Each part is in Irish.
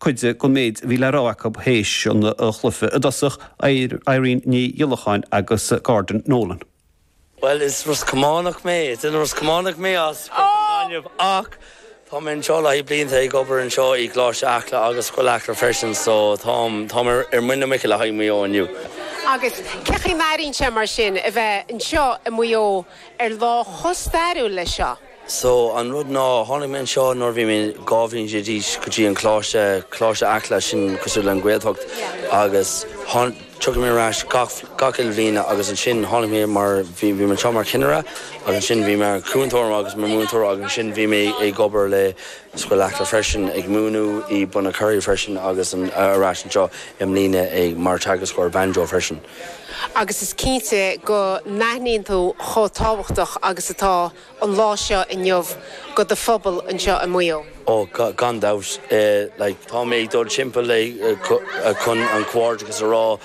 cuid den méid a bhí le rá acu théis an chluife i dtosach, Irene Ní Ghiolacháin agus Gordon Nolan. Bhuel, is Ros Cománach mé, is duine Ros Cománach mé, ach tá mé anseo le haghaidh blianta ag obair anseo i gColáiste Acla agus Scoil Acla freisin so táim, táim ar, ar muin na muice le haghaidh Maigh Eo inniu. Agus cén chaoi a n-airíonn sé mar sin a bheith anseo i Maigh Eo ar lá chomh stairiúil leis seo? So, an rud ná, tháinig mé anseo nuair a bhí mé dhá bhliain déag d'aois go dtí an Coláiste, Coláiste Acla, sin cosúil le an Gaeltacht, agus tiocfaidh mé ar ais gach uile bhliain agus ansin tháinig mé mar, bhí mé anseo mar chinnire agus ansin bhí mé mar cúntóir agus mar múinteoir agus ansin bhí mé ag obair le Scoil Acla freisin ag múineadh i Bunacurry freisin agus ar ais anseo i mbliana ag mar teagascóir banjo freisin. Agus is cinnte go n-aithníonn tú chomh tábhachtach agus atá. an lá seo inniu go do phobal anseo i Muigh Eo. Ó, gan dabht. Like, tá mé ag dul timpeall chun an comhghairdeachas a rá,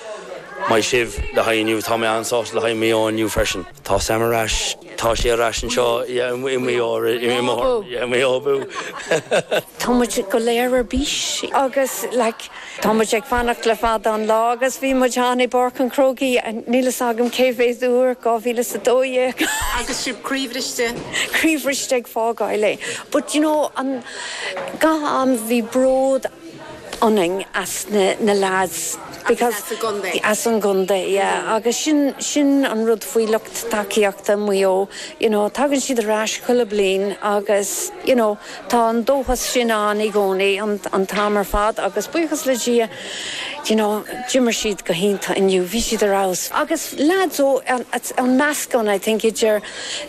maith sibh le haghaidh inniu. Tá mé an-sásta le haghaidh Maigh Eo inniu freisin. Tá Sam ar ais, tá sé ar ais anseo i Muigh Eo, Maigh Eo abú! Tá muid go léir ar bís agus like. Tá muid ag fanacht le fada an lá agus bhí muid ann i bPáirc an Chrócaigh, níl fhios agam cé mhéad uair, dhá mhíle is a dó dhéag. Agus sibh croíbhriste? Croíbhriste ag fágáil é. But you know, an, gach am bhí bród ionainn as na, na lads because. As an gcontae. As an gcontae, yeah. Agus sin, sin an rud faoi lucht tacaíochta Mhaigh Eo, you know, tagann siad ar ais chuile bliain agus, you know, Tá an dóchas sin ann i gcónaí, an t-am ar fad, agus buíochas le Dia, you know, d'imir siad go hiontach inniu, bhí siad ar fheabhas. Agus leaids ó, it's an meascán I think idir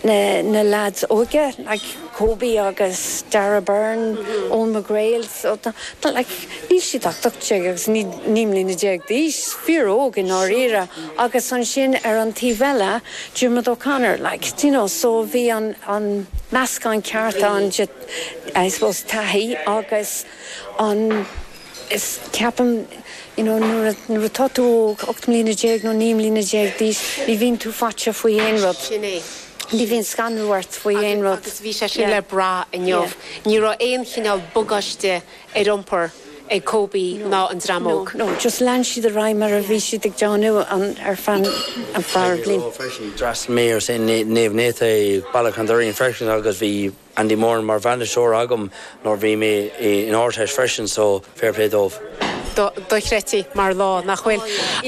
na leaids óga, like Kobe agus Darragh Beirne, Eoin McGreal, so tá, like níl siad ach 18 agus 19 mbliana d'aois, fíor óg i ndáiríre, agus ansin ar an taobh eile, Diarmuid O'Connor, like, do you know, so bhí an, an meascán ceart ann de, I suppose, taithí agus an, is, ceapaim, you know, nuair a, nuair atá tú óg, ocht mbliana déag nó naoi mbliana déag d'aois, ní bhíonn tú faiteach faoi aon rud. Sin é. Ní bhíonn scanradh ort faoi aon rud. Agus bhí sé sin le brath inniu. Ní raibh aon chineál bagáiste ar iompar ag Kobe ná an dream óg. D'fhreastalaíomar ar Naomh Náithí i Bealach an Doirín freisin agus bhí Andy Moran mar bhainisteoir agam nuair a bhí mé in Ardteist freisin so fair play dóibh. Dochreidte mar lá, nach bhfuil?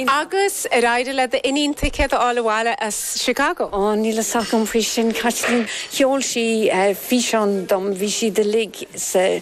Agus ar éirigh le d'iníon ticéad a fháil abhaile as Chicago? Ó, níl fhios agam faoi sin, Caitlín. Sheol sí físeán dom, bhí siad uilig sa.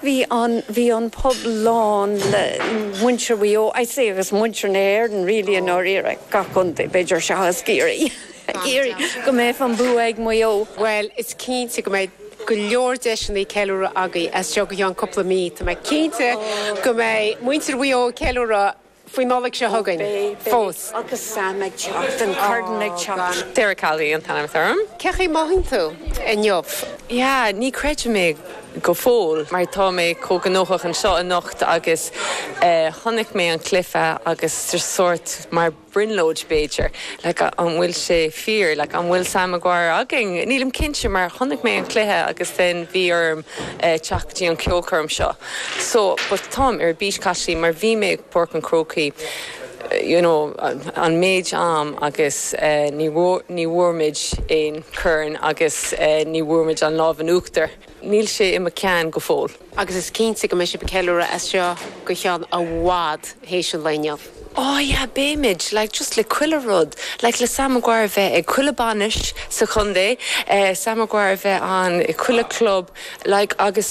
Bhí an bhí an pub lán le muintir Mhaigh Eo, I'd say agus muintir na hÉireann really i ndáiríre, gach contae b'fhéidir seachas Ciarraí, go mbeadh an bua ag Maigh Eo. Bhuel is cinnte go mbeidh go leor deiseanna ceiliúradh againn as seo go ceann cúpla mí, tá mé cinnte go mbeidh muintir Mhaigh Eo ag ceiliúradh, faoin Nollaig seo chugainn fós. Agus Sam ag teacht, an Corn ag teacht. Sarah Calvi an t-ainm atá orm. Cén chaoi mothaíonn tú inniu? Yeah, ní chreidim é go fóill mar tá mé chomh gnóthach anseo anocht agus eh, chonaic mé an cluiche agus just sórt mar brionglóid b'fhéidir. Like an bhfuil sé fíor? Like an bhfuil Sam Maguire againn? Nílim cinnte mar chonaic mé an cluiche agus then bhí orm eh, teacht go dtí an ceolchoirm seo. So, but táim ar bís gan dabht mar bhí mé ag Páirc an Chrócaigh you know an méid am agus ní bhfuair ní bhfuair muid aon corn agus ní bhfuair muid an lámh in uachtar. Níl sé i mo cheann go fóill. Agus is cinnte go mbeidh sibh ag ceiliúradh as seo go ceann i bhfad théis an lae inniu. Oh yeah beimid like just le chuile rud like le Sam Maguire bheith ag chuile bhainis sa chontae, Sam Maguire bheith ann i chuile chlub like agus.